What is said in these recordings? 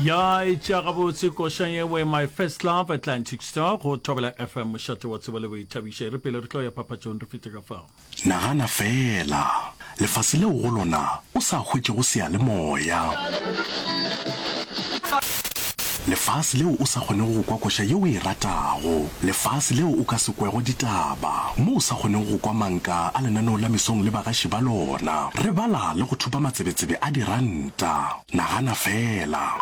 ya etša gabotse koša yewe my first love atlantic star go thobela fm mošate wa tsebo le boithabišo e re pele re tlo ya phaphatsong re fete ka fao Nagana feela, lefase leo go lona o sa hwetšego seyalemoya. Lefase leo o sa kgonego go kwa koša yeo o e ratago. Lefase leo o ka se kwego ditaba, mo o sa kgonego go kwa manka a lenaneo la mesong le bagaši ba lona. Re bala le go thupa matsebetsebe a diranta. Nagana feela!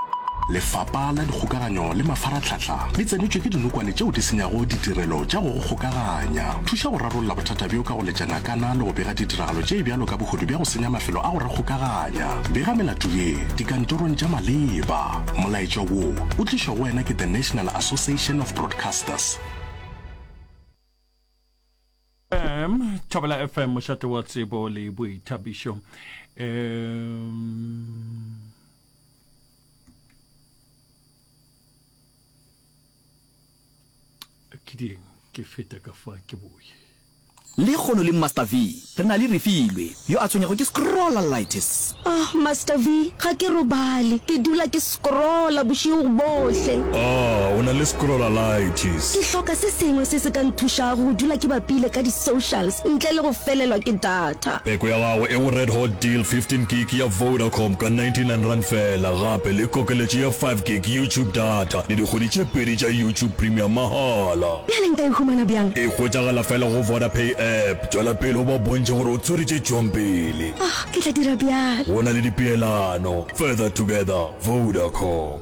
Lefapa la Dikgokaganyo le Mafaratlhatlha le tsenetšwe ke dinokwane tšeo di senyago ditirelo tša go go kgokaganya. Thuša go rarolla bothata bjo ka go letša ngakana le go bega ditiragalo tše bjalo ka bohodu bja go senya mafelo a go re kgokaganya. Bega melato ye dikantorong tša maleba. Molaetša wo o tlišwa go wena ke The National Association of Broadcasters. Um, Thobela FM, mošate wa tsebo le boithabišo. Um, ke ding ke feta ka fa ke boye le kgono le master v re na le refilwe Yo a tshwenyago ke scrollalitis. Ohh Master V, ga ke robale, ke dula ke scrolla bošego bohle. Ahh, o na le scrollalitis. Ke hloka se sengwe se se ka nthušago go dula ke bapile ka di socials ntle le go felelwa ke data. Peko ya gago e go Red Hot Deal 15 gig ya Vodacom ka 99 rand fela gape le kokeletšo ya 5 gig YouTube data le dikgwedi tše pedi tša YouTube Premium mahala. Bjale nka e humana bjang? E hwetšagala fela go Vodapay app. Tšwela pele o ba bontšhe gore o tshwere tše tšwang pele. Oh, ke tla dira bjalo. Go na le dipeelano. Further together, Vodacom.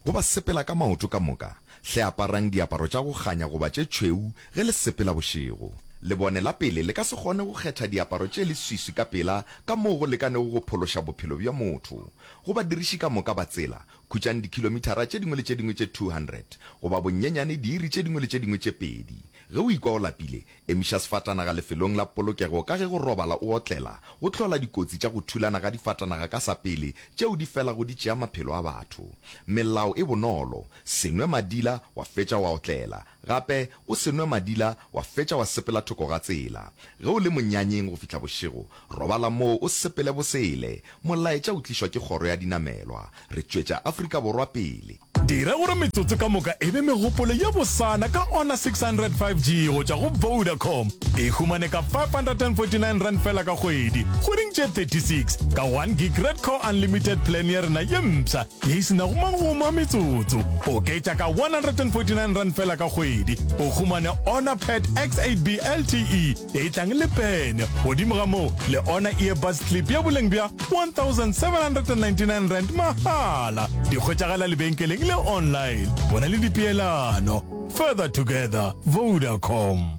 Go ba sepela ka maoto ka moka, hle aparang diaparo tša go kganya goba tše tšhweu ge le sepela bošego. Lebone la pele le ka se kgone go kgetha diaparo tše leswiswi ka pela ka moo go lekanego go phološa bophelo bja motho. Go badiriši ka moka ba tsela, Khutšang dikhilomithara tše dingwe le tše dingwe tše 200, goba bonnyenyane diiri tše dingwe le tše dingwe tše pedi. Ge o ikwa o lapile, emiša sefatanaga lefelong la polokego ka ge go robala o otlela go hlola dikotsi tša go thulana ga difatanaga ka sa pele tšeo di felago di tšea maphelo a batho. Melao e bonolo, Se nwe madila wa fetša wa otlela. Gape o se nwe madila wa fetša wa sepela thoko ga tsela. Ge o le monyanyeng go fihla bošego, robala moo o sepele bosele. Molaetša o tlišwa ke kgoro ya dinamelwa. Re tšwetša Afrika Borwa pele. Dira gore metsotso ka moka e be megopolo ye bosana ka Honor 600 5G go tšwa go Vodacom. E humane ka R549 fela ka kgwedi, kgweding tše 36, ka one gig Red Core Unlimited Plan ya rena ye mpsha. Ye e se nago magomo a metsotso, oketša ka R149 fela ka kgwedi, o humane Honor Pad X8B LTE e tlang le pene, godimo ga moo le Honor Earbuds Clip ya boleng bja R1,799 mahala. Di hwetšagala lebenkeleng le online. Go na le dipeelano. Further together. Vodacom.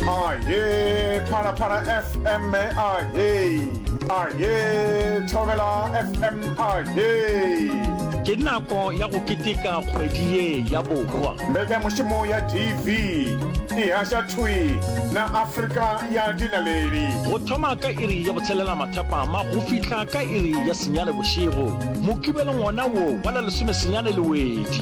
Aye, Phala Phala FM, aye. Aye, Thobela FM, aye. Ke nako ya go keteka kgwedi ye ya borwa. Mbeka mošomo ya TV, e hasha thwi na Afrika ya dinaleli. Go thoma ka iri ya botshelela mathapama go fihla ka iri ya senyane bošego. Mokibelo ngona wo wa la lesome senyane le wedi.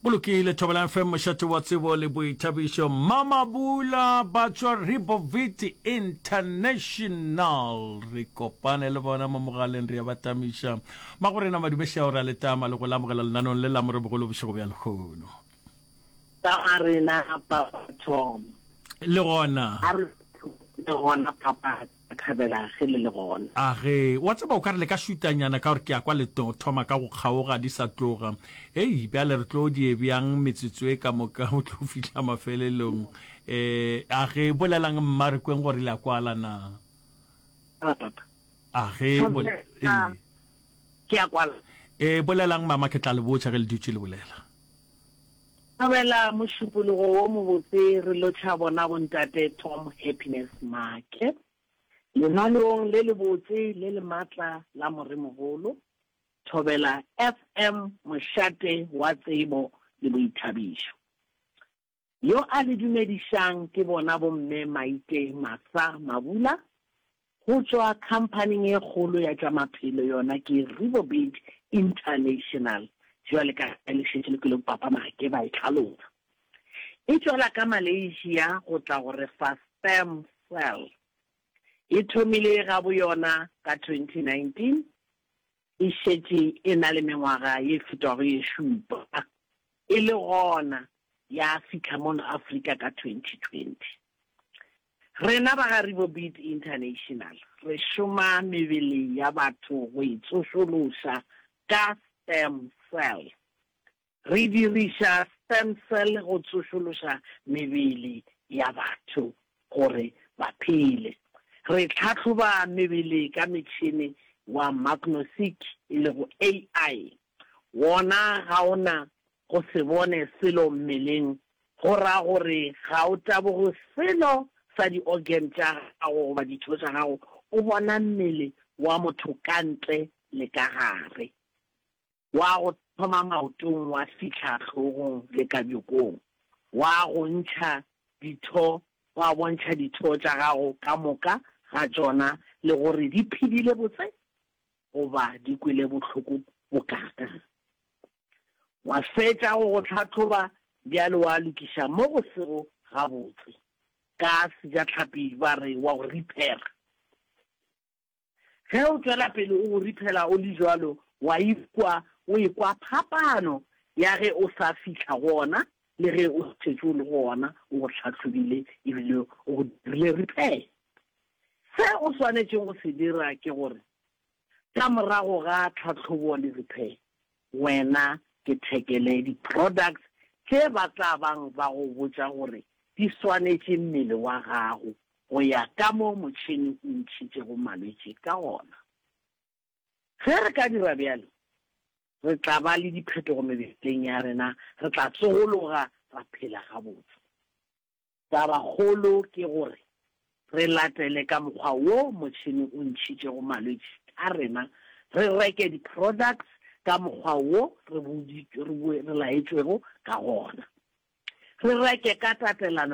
Go lokile Thobela FM mošate wa tsebo le boithabišo Mama Bula ba tšwa Ribovit International re kopane le bona mo mogaleng re ya ba tamiša Magorena Madumešao re a le tama le go le amogela lenanong le la morebo golo bošego bja lehono Tama rena Papa Tom le gona a re le gona Papa Ka thabela ge le le gona. A ge, wa tseba, o ka re le ka šutanyana, ka gore ke a kwa le tlo thoma ka go kgaoga di sa tloga. Hei, bjale re tlo die bjang metsotso e ka moka go tlo fihla mafelelong? E, a ge, bolelang mma re kweng gore le a kwala na. A, papa. A ge, bol, e. Ke a kwala. E, bolelang mama, ke tla le botša ge le dutše le bolela. Thobela mošupologo wo mobotse re lotšha bona Bontate Tom Happiness Maake lengwalong le lebotse le le matla la Moremogolo. Thobela FM mošate wa tsebo le boithabišo. Yo a le dumedišang ke bona bomme Maite Martha Mabula go tšwa khamphaning e kgolo ya tša maphelo yona ke Riverbed International, bjale ka ge le šetše le kwele Papa Maake ba e hlalosa. E tšwela ka Malaysia go tla go re fa sperm cell. E thomile ga bo yona ka 2019, e šetše e na le mengwaga ye fetago ye šupa, e le gona ya fihla mono Afrika ka 2020. Rena ba ga Ribobeat International re šoma mebele ya batho go e tsošološa ka sperm cell. Re diriša sperm cell go tsošološa mebele ya batho gore ba phele. Re tlhahloba mebele ka metšhene wa magnoseq e lego AI. Wona ga o na go se bone selo mmeleng go ra gore ga o taboge selo sa di-organ tša gago goba ditho tša gago, o bona mmele wa motho ka ntle le ka gare, wa go thoma maotong wa fihla hlogong le ka bjokong, wa go ntšha ditho, wa bontšha ditho tša gago ka moka ga tšona le gore di phedile botse goba di kwele bohloko bokaakang. Wa fetša go go hlahloba bjale wa lokiša mo go sego gabotse, ka Sejatlhapi ba re wa go riphera. Ge o tšwela pele o go riphela o le bjalo, wa ikwa o ekwa phapano ya ge o sa fihla go ona le ge o šetše o le go ona, o go hlahlobile e bile o go dirile riphela. Se o swanetšego go se dira ke gore ka morago ga tlhahlobo le rephe wena ke thekele di products tše ba tla bang ba go botša gore di swanetše mmele wa gago go ya ka mo motšhene o ntšhitšego malwetši ka gona. Ge re ka dira bjalo re tla ba le diphetogo mebeleng ya rena re tla tsogologa ra phela gabotse. Tabakgolo ke gore re latele ka mokgwa wo motšhene o ntšhitšego malwetši ka rena, re reke di-products ka mokgwa wo re laetšwego ka gona, re reke ka tatelano